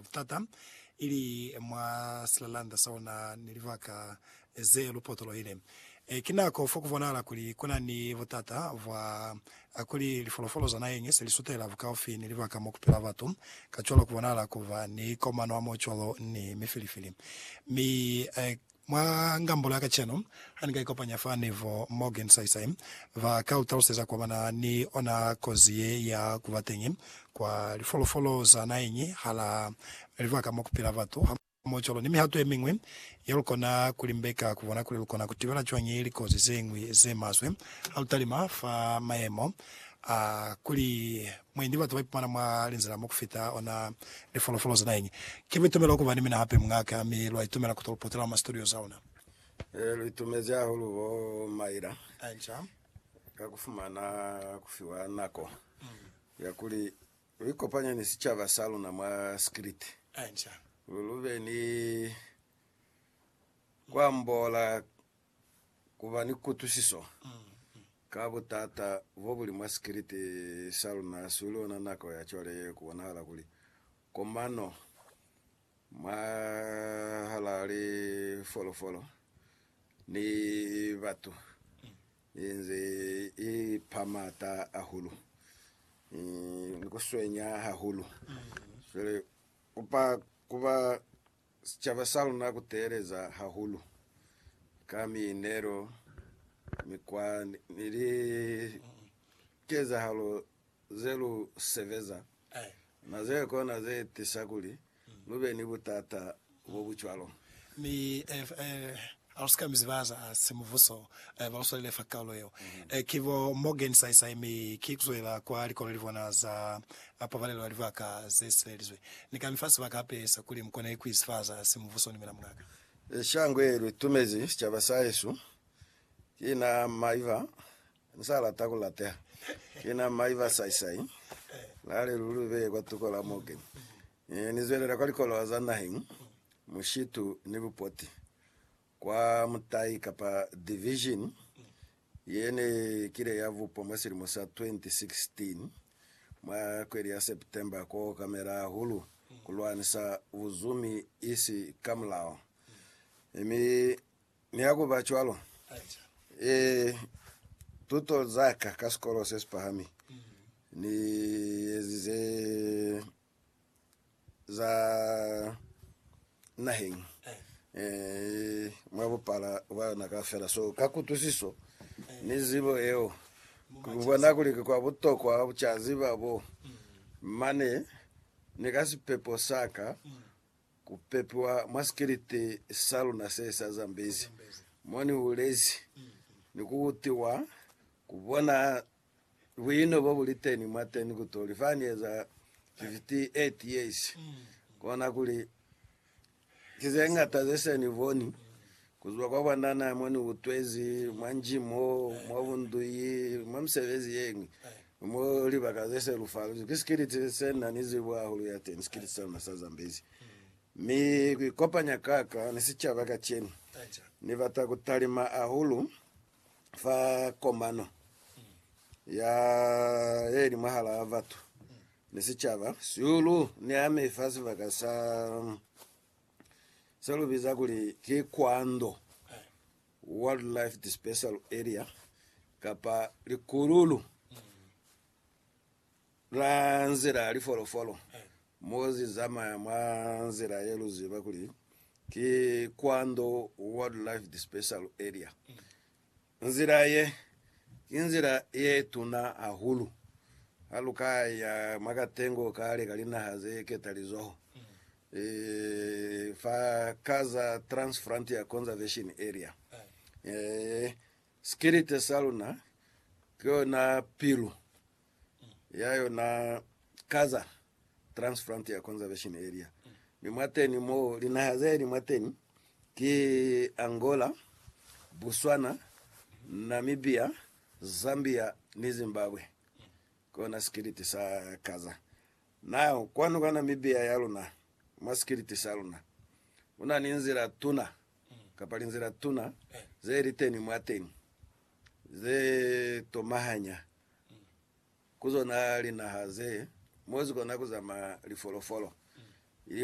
butata, ili mwa silalanda sa ona ni libaka ze lu potolohile. Ki nako fo ku bonahala kuli ku na ni butata bwa kuli lifolofolo za naheng ye se li sutela bukaufi ni libaka mo ku pila batu, kacwalo ku bonahala ku ba ni komanwamo cwalo ni mifilifili. Mi Mwa ngambulo ya kacenu, ha ni ka ikopanya fa Neville Morgan saisai, ba ka u taluseza kua ba na ni ona kozi ye ya ku ba teñi kwa lifolofolo za naheñi hala libaka mo ku pila batu, hamohocwalo ni mihato ye miñwi ye lu kona ku limbeka ku bona kuli lu kona ku tibela cwañi likozi ze ñwi ze maswe ha lu talima fa mayemo a kuli Mwendi batu baipumana mwa linzila mo kufita ona lifolofolo za naheñi. Ki buitumelo ukuba ni mina hape muñaKa, mi luaitumela kuto luputela mwa studio za una. Ee, luitumezi hahulu bo Myra ka kufumana kufiwa nako ya kuli luikopanye ni sicaba sa luna mwa Skrit, kuli lube ni kuambola ku ba ni kutwisiso ka butata bo buli mwa sikiliti sa luna su li ona nako ya cwale ye ku bonahala kuli komano mwahalaa lifolofolo ni batu i nze i pa m'ata ahulu ni ku swenya hahulu. Cwale ku ba Sicaba sa luna ku teeleza hahulu ka miinelo, mikwa ni likezahalo ze lu sebeza na ze kona ze tisa kuli lu be ni butata bo bu cwalo. Mi Halusika mi ziba za simubuso baluswalile fa kaulo yeo ki bo Morgan Saisai mi ki kuzwela kwa likolo libona za pabalelo ya libaka zesibelizwe. Ni kami fa sibaka hape sa kuli mukona ikuizi fa za simubuso ni mina mungaka. Shango ye lutumezi sicaba sahesu ki na Maiva Ku sa lata ku lateha. Ki na mai ba saisai. Na li luli beye kwa tuko la Morgan. Ni zwelela kwa likoloha za naheng, mushitu ni bupoti, kwa mutai kapa division ye ne kile ya bupwa mwa silimo sa 2016, mwa kweli ya September, ku okamela hahulu ku lwanisa buzumi isi ka mulao. Mi Ni ha ku ba cwalo, e, tuto za ka ka sikolo se si pahami ni ezize za naheng e, mwa bupala bwa yona kaufela. So, ka kutwisiso ni zibo yeo, ku bona kuli ki kwa butokwa ku ca ziba bo mane ni ka sipepo sa ka Ku pepiwa mwa sikiliti sa luna se sa Zambezi mo ni hulezi, ni ku utiwa, ku bona buino bo bu liteni mwateni ku toli fa ni eza 58 years, kona kuli ki ze ñata ze se ni boni Kuzwa kwa bwanana mo ni utwezi, mwa nji mo, mwa bunduyi, mwa misebezi yeñwi, mo libaka ze se lu faluzi, ki sikiliti se na ni zibo hahulu ya teni, sikiliti sa luna sa Zambezi. Mi ku ikopanya ka ka ni sicaba kacenu, Ni bata ku talima hahulu fa komano ya ye li mwahala batu ni sicaba sihulu ni ami fa sibaka sa se lu biza kuli ki Kwando Wildlife Dispersal Area kapa likululu la nzila ya lifolofolo mo zi zamaya mwa nzila ye lu ziba kuli ki Kwando Wildlife Dispersal Area. Nzila ye, ki nzila ye tuna hahulu ha lu ka ya mwa katengo kale ka linaha ze ketalizoho, fa ka za Trans-Frontier Conservation Area. Sikilite sa luna ki yona pilu ya yona Gaza Transfrontier Conservation Area, mi mwateni mo linaha zeli mwateni ki Angola, Botswana, Namibia, Zambia ni Zimbabwe. Kona sikiliti sa Gaza. Nao kwanu kwa Namibia ya luna, mwa sikiliti sa luna, kuna ni nzila tuna kapa linzila tuna zeli teni mwateni ze tomahanya ku zona linaha ze mwezi kona ku zamaya lifolofolo ili ku.